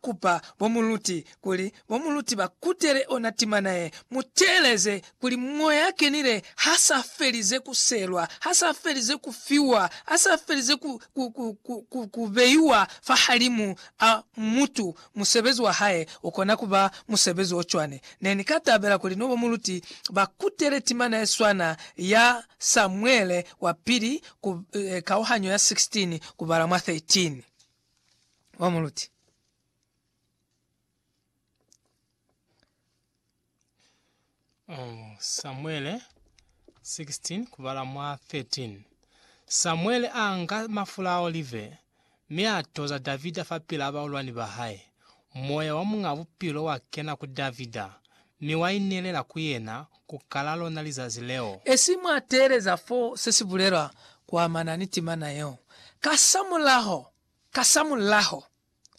kupa bo muluti kuli bo muluti ba kutele ona timana ye. Mu teeleze kuli Moya a Kenile ha sa felize ku selwa, ha sa felize ku fiwa, ha sa felize ku, ku, ku, ku, ku, ku beiwa fahalimu a mutu. Musebezi wa Hae u kona ku ba musebezi o cwani. Ne ni ka tabela kuli no bo muluti ba kutele timana ye swana ya Samuele wa Pili ku, eh, kauhanyo ya 16 kubala mwa 13. wa muluti. Oh, Samuele 16 kubala mwa 13 Samuele a nga mafula a olive mi a toza Davida fa pila baulwani ba hae, Moya wa Muñ'a Bupilo wa kena ku Davida, mi wa inelela ku yena ku kala lona lizazi leo. Esi mwa teeleza fo se si bulelwa ku amana ni timana yeo, kasamulaho, kasamulaho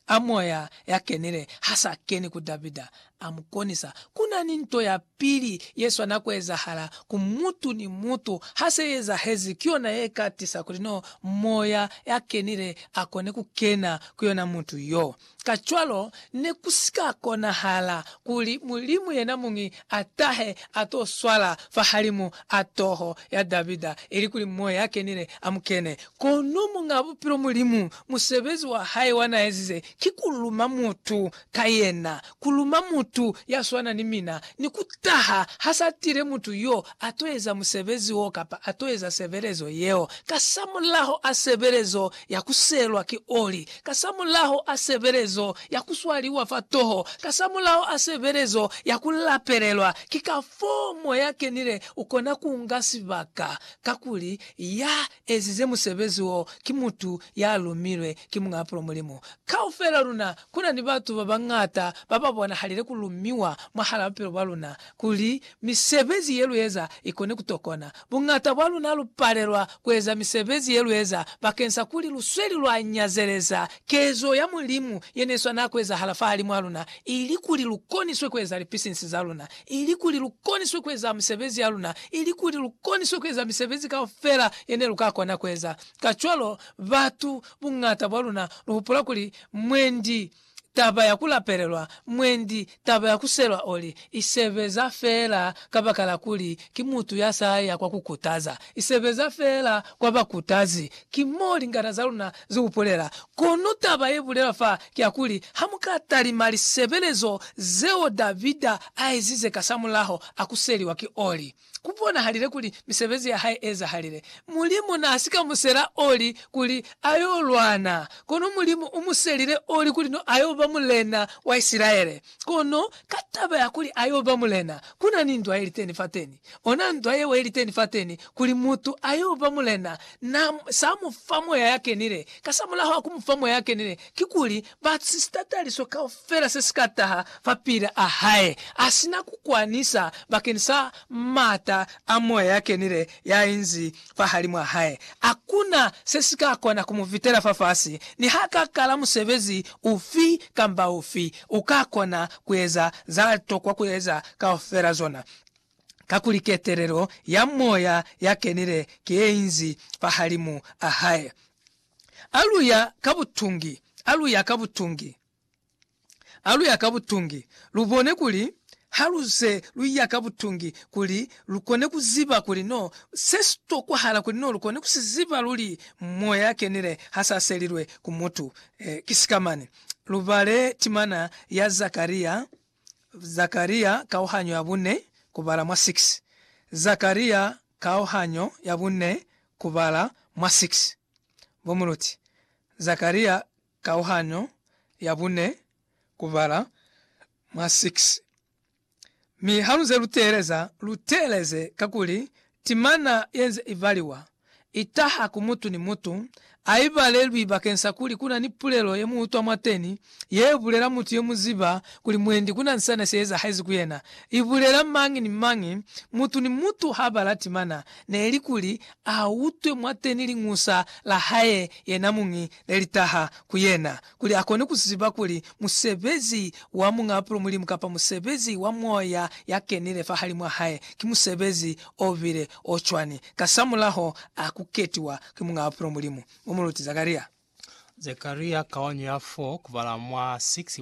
a Moya ya kenile ha sa keni ku Davida, a mu konisa. Ku na ni nto ya Pili ye swana ku ezahala ku mutu ni mutu, ha se i ezahezi, ki yona ye ka tisa kuli no Moya ya Kenile a kone ku kena ku yona mutu yo. Kacwalo, ne ku si ka konahala kuli Mulimu yenamuñi a tahe a to swala fahalimu a toho ya Davida, ili kuli Moya ya Kenile a mu kene. Kono Muñ'a Bupilo Mulimu, musebezi wa hae wa n'a ezize ki ku luma mutu ka yena, kuluma mutu ya swana ni mina, ni kutaha ha sa tile mutu yo a to eza musebezi wo kapa a to eza sebelezo yeo, kasamulaho a sebelezo ya ku selwa ki oli, kasamulaho a sebelezo ya ku swaliwa fa toho, kasamulaho a sebelezo ya ku lapelelwa, ki kafoo Moya Kenile ukona kunga sibaka, kakuli Ya ezize musebezi wo ki mutu ya lumilwe ki Muñ'a Pulo Mulimu. Kaufel'a luna ku na ni batu ba bañata ba ba bonahalile ku lumiwa mwahal'a bupilo bwa luna kuli misebezi ye lu eza i kone ku tokona. Buñata bwa luna lu palelwa ku eza misebezi ye lu eza bakeng sa kuli lu sweli lwa nyazeleza kezo ya Mulimu ye ne swana ku ezahala fahalimw'a luna, ili kuli lu koniswe ku eza lipisinsi za luna. ilikuli lukoniswe kueza misebezi yaluna, ilikuli lukoniswe kueza misebezi kaufela yene luka kona kueza. Kacwalo, batu buñata bwaluna luhupula kuli mwendi taba ya kulapelelwa, mwendi taba ya kuselwa oli, isebeza feela kabakala kuli ki mutu yasaya kwa kukutaza, isebeza feela kwa bakutazi. Ki mo lingata zaluna Ze ubulela. Kono taba ye bulelwa fa kya kuli, ha mu ka talima lisebelezo zeo Davida a ezize kasamulaho a kuseliwa ki Oli, ku bonahalile kuli misebezi ya hae e ezahalile. Mulimu n'a si ka musela Oli kuli a y'o lwana, kono Mulimu u muselile Oli kuli n'o a y'o ba mulena wa Isilaele. Kono ka taba ya kuli ayo ba mulena, ku na ni ndwa ye liteni fateni. Ona ndwa yeo ye liteni fateni, kuli mutu ayo ba mulena, na sa mu fa Moya ya Kenile. Kasamulaho wa ku mu fa Moya ya Kenile, kikuli, ba sista taliso kaufela se si ka taha fapil'a hae, a si na ku kwanisa bakeni sa m'ata a Moya ya Kenile ya inzi fahalimw'a hae. A kuna se si ka kona ku mu vitela fafasi. Ni ha ka kala musebezi ufi kamba ufi, u ka kona ku eza za tokwa ku eza kaufela zona, kakuli ketelelo ya Moya ya kenile ki ye inzi fahalimu a hae. A lu ya ka butungi, a lu ya ka butungi. ha lu ya ka butungi, lu bone kuli ha lu ze lu ya ka butungi kuli lu kone ku ziba kuli no se si tokwahala kuli no lu kone ku si ziba luli Moya ya Kenile ha sa selilwe ku mutu. Ki sika mane. Lu bale timana ya Zakaria, Zakaria kauhanyo ya bune, ku bala mwa 6. Zakaria kauhanyo ya bune, ku bala mwa 6. Bo muluti, Zakaria Kauhanyo ya bune, kubala mwa 6. Mi haluze luteeleza, luteeleze kakuli timana yenze ibaliwa itaha ku mutu ni mutu, aibalelwi bakeng sa kuli kuna ni pulelo yemuutwa mwateni yebulela mutu yemuziba kuli mwendi kuna ni sane seezahezi ku yena. Ibulela mañi ni mañi, mutu ni mutu habala timana, neli kuli autwe mwateni liñusa lahae yenamuñi ne li taha ku yena, kuli a kone ku ziba kuli musebezi wa Muñaapulo Mulimu kapa musebezi wa Moya ya Kenile fahalimw'a hae ki musebezi o bile o cwani. Kasamulaho a ku ketiwa ki Muñaapulo Mulimu, u mu luti Zakaria. Zakaria kaonyo ya 4 kubala mwa 6,